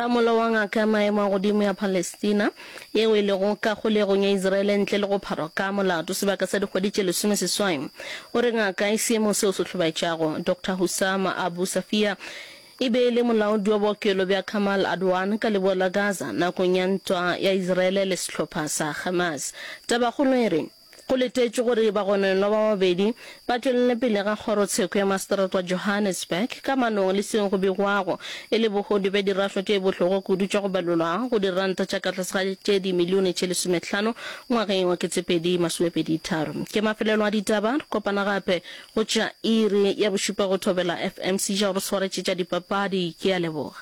Ramolo wa ngaka ya maemo a godimo ya Palestina, yeo e lego ka kgolegong ya Isiraele ntle le go pharwa ka molato sebaka sa dikgwedi tše lesomeseswai, o re ngaka e seemong seo se hlobaetšago. Doctor Hussam Abu Safiya e be e le molaodi wa bookelo bja Kamal Adwan ka leboa la Gaza nakong ya ntwa ya Isiraele le sehlopha sa Hamas. Tabakgolo e re, Go letetšwe gore bagononwa ba babedi ba tšwelele pele ga kgorotsheko ya maseterata wa Johannesburg ka manong le seo go begwago e le bohodu bja dirašwa tše bohloko kudu tša go balolwa go diranta tša ka tlase ga tše dimilione tše lesometlhano ngwageng wa ketsepedi masomepedi tharo. Ke mafelelo a ditaba, re kopana gape go tša iri ya bošupa go thobela FM. Sija o re swaretše tša dipapadi, ke a leboga.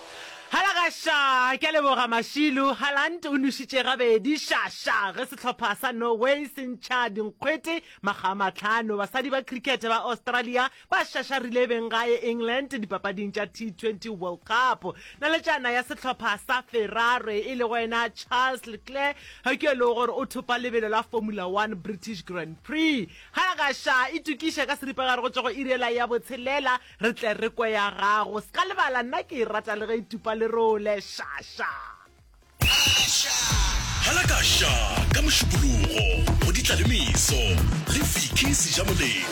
Hala ga sha! Ke a leboga Mashilu. Halant o nušitše gabedi. Sha! Sha! Ge sehlopha sa Norway se ntšha dinkgwete makga a mahlano, basadi ba cricket ba Australia ba šašarile beng gae England dipapading tša T20 World Cup. Naletšana ya sehlopha sa Ferrari e lego yena Charles Leclerc ga ke yo e lego gore o thopa lebelo la Formula One British Grand Prix. Hala ga sha! Itokiša ka seripagare go tšwa go iri yela ya botshelela. Re tle re kwe ya gago. Ska lebala nna ke e rata le ge e tupa lerole. Sha sha. Hala ka sha ka mošupologo go ditla le meso le Vicky Sejamoletša.